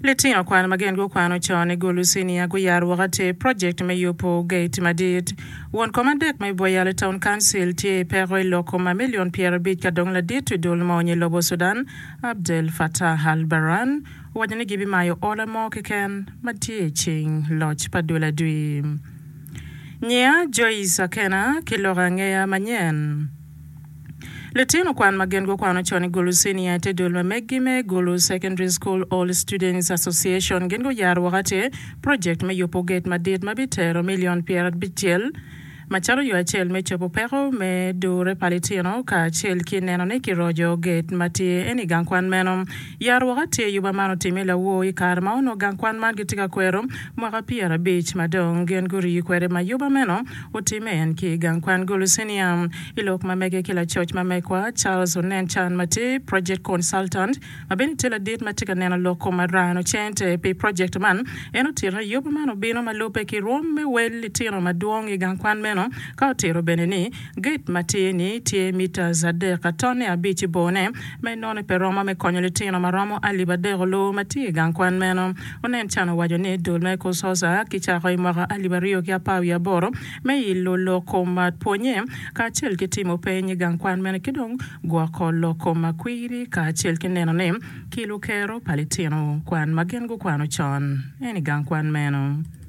Litino kwan ma gengo kwano con i Gulucinia guyaro woko atir projekt me yubo gate madit. Won kom adek me Boyale Town Council tye i peko i loko ma milion pyerabic ka dong ladit wi dul mony i lobo Sudan, Abdel Fattah al-Burhan, owaco ni gibimayo ola mo keken ma tye i cing loc pa dul adwi. Nyiya Joyce Akena ki loko angeya manyen. Litino kwan ma gin gukwano con i Gulu Senior te dul ma meggi me Gulu Secondary School All Students Association gin guyaro woko atir project me yubo gate madit ma bitero million pyerabicel macalo yo acel me cobo peko me dure pa litino kacel ki neno ni kirojo gate matye en i gang kwan meno. Yaro woko atir yuba man otime lawor i kare ma onongo gang kwan man gitye ka kwero mwaka pyerabic madong gin guriyi kwede ma yuba meno Otimme en ki i gang kwan Gulucinia. I lok ma mege ki lacoc ma megwa, Charles onen can matir, project consultant, ma bene tye ladit ma tye ka neno lok kom arano cente pi project man. En otito ni yubu man obino ma lubbe ki rwom me wel litino madwong i gang kwan meno, ka otito bene ni gate matir ni tye metres adek atone abic i bor ne, ma enoni pe romo me konyo litino ma romo alip adek oloo ma tye i gang kwan meno. Onen can owaco ni dul me Kusosa kicako i mwaka alip aryo ki apar wiye aboro me ilo loko ma pwonye kacel ki timo peny i gang kwan mene ki dong gwoko loko ma kwiri kacel ki neno ni kilo kero pa litino kwan ma gin gukwano con en i gang kwan meno.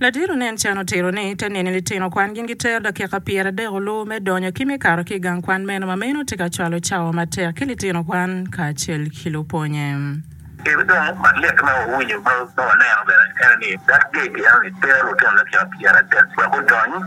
Ladiro nen can otito ni te nini litino kwan gin gitero dakika pyeradek oloo me donyo ki me kato ki i gang kwan meno ma meno tye ka cwalo cawa matek ki litino kwan kacel ki lupwonye. Kit dong ma lit ma wawinyo ma waneno bene en ni Dad Gage en ni tero lutino dakika pyeradek wek gudony.